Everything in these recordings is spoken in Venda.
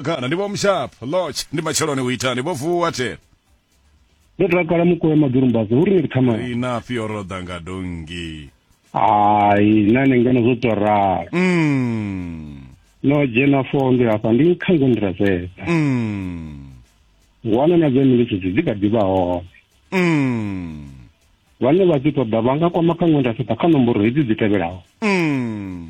kana ndi vho mushap lodge ndi matsheloni u itani vho vuwa te ndo takala mukoe madurumbazi uri ni kuthamani rina fio ro ḓa nga dongi hayi nane ngeno zwo to rala mm. no dzhena foo ndi hafha ndi khango ndi razeza mm. wana na dze miletshedzi dzi kha ḓi vha hone mm. vhane vha dzi ṱoḓa vha nga kwama khango ndi razeza kha nomboro hedzi dzi tevhelaho mm.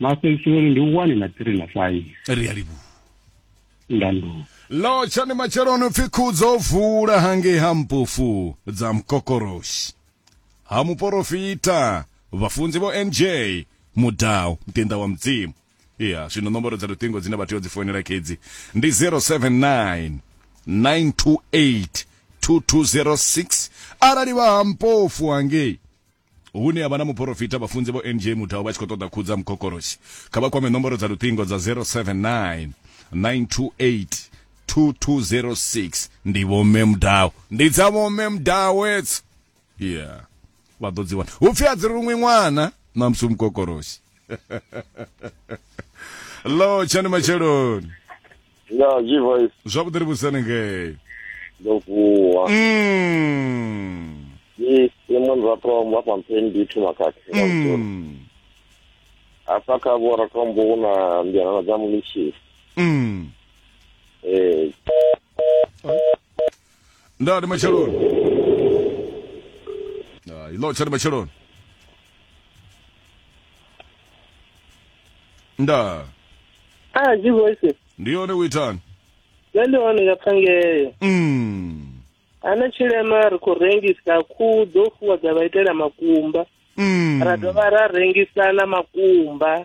maseisoni ndi one na three na five ri a livhuwa ndandulo lotsha ndi matsheloni upfi khudzo vula hangei ha mpofu dza mkokoroshi ha muporofita vhafunzi vho nj mudau mtenda wa mudzimu ya zwino nomboro dza luṱingo dzine vha tea u dzi foinela khedzi ndi 079 928 2206 arali vha ha mpofu hangei hune ya vha na muporofita vhafunzi vho nj mutau vha tshi khou ṱoḓa khudza mukokoroshi kha vha kwame nomboro dza luṱingo dza 079 928 2206 ndi vho mme mudau ndi dza vho mme mudau etso yeah vha ḓo dzi wana hupfi a dzi ruṅwi ṅwana na musi mukokoroshi lo tshani matsheloni ya zwi voice zwavhuḓi ri vhusani ngei ndo vuwa Mm. ni simo ni ratombo hafha mpeni ndi thoma khakhe Mm. hafha kha vho ratombo hu na mbianana dza munishisi Mm. eh nda ndi matsheloni Ah, i lotsha ndi matsheloni nda Ah, dzi voice. ndi yone u itani Nṋe ndi hone nga phangeyo. mm. Ana tshilema ri khou rengisa khuhu dzo fuwa dza vha itela makumba. Mm. Ra dovha ra rengisa na makumba.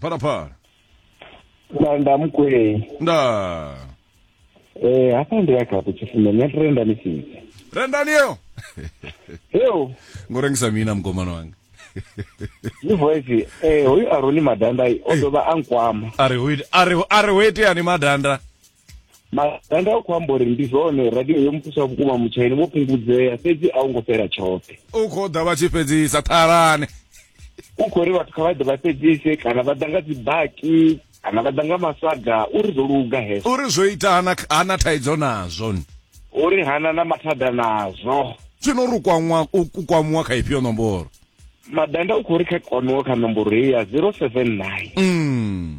phalaphala nda nda mukwei nda eh hafha ndi ya khapo tshifundo nṋe trenda ni fhidzi rendani yo yo ngo rengisa mina mukomana wanga ni voice eh hoyu aroni madanda o dovha a nkwama a ri ho ite- a ri ho- a ri ho iteani madanda maganda a khou amba uri ndi zwone radio yo muthusa vhukuma mutshaini vho fhungudzea fhedzi a u ngo fhela tshoṱhe u khou ḓa vha tshi fhedzisa ṱhalane u khou ri vhathu kha vha ḓe vha fhedzise kana vha ḓa nga dzibaki kana vha ḓa nga masaga uri zwo luga hezwo uri zwo ita hana, hana thaidzo nazwo uri hana na mathada nazwo zwino uri u kwamwa- u- u kwamuwa kha ifhio nomboro madanda u khou ri kha kwamiwa kha nomboro heyi ya 079 mm.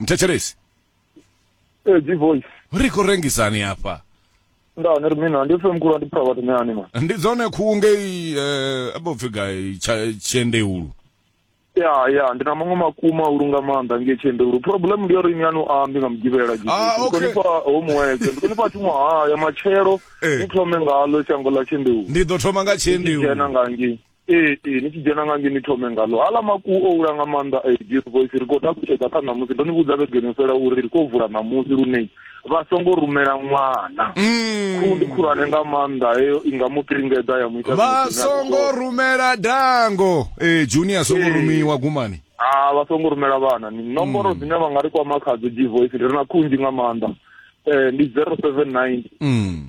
mthetshelesi ee dzi voice ri khou rengisani hafha nda ni ri mina ndi pfe mkhulu ndi pfa vhathu meani ma ndi dzone khuhu ngei eh, abo pfi gai Tsha- tshiendeulu ya ya ndi na maṅwe makuma ulu nga maanḓa nge tshendelu problem ndi yori ni yanu ambi nga mugivhela Ah, okay. ndikonifha homework ndikonifha tshiṅwe haya matshelo Eh. ni thome ngalo shango ḽa tshendelu ndi ḓo thoma nga tshiendeulu dzhena nga ngei ee ee ni tshi dzhena nga nge ni thome ngalo hala makuwu o hula nga maanḓa a dear voice ri khou takutshedza kha ṋamusi ndo ni vhudza vhegeni yo fhela uri ri khou vula ṋamusi lune vha songo rumela ṅwana Mm. khundi khulwane nga maanḓa heyo i nga mu kiringedza ya mu ita vha zwithu zwine a zwi songo ṱoḓa. rumela dango ee junior songo Ee. rumiwa gumani Ah, vha songo rumela vhana ni nomboro dzine vha nga ri kwama khadzo g voice ri na khunzhi nga maanḓa um ndi zero seven nine mm.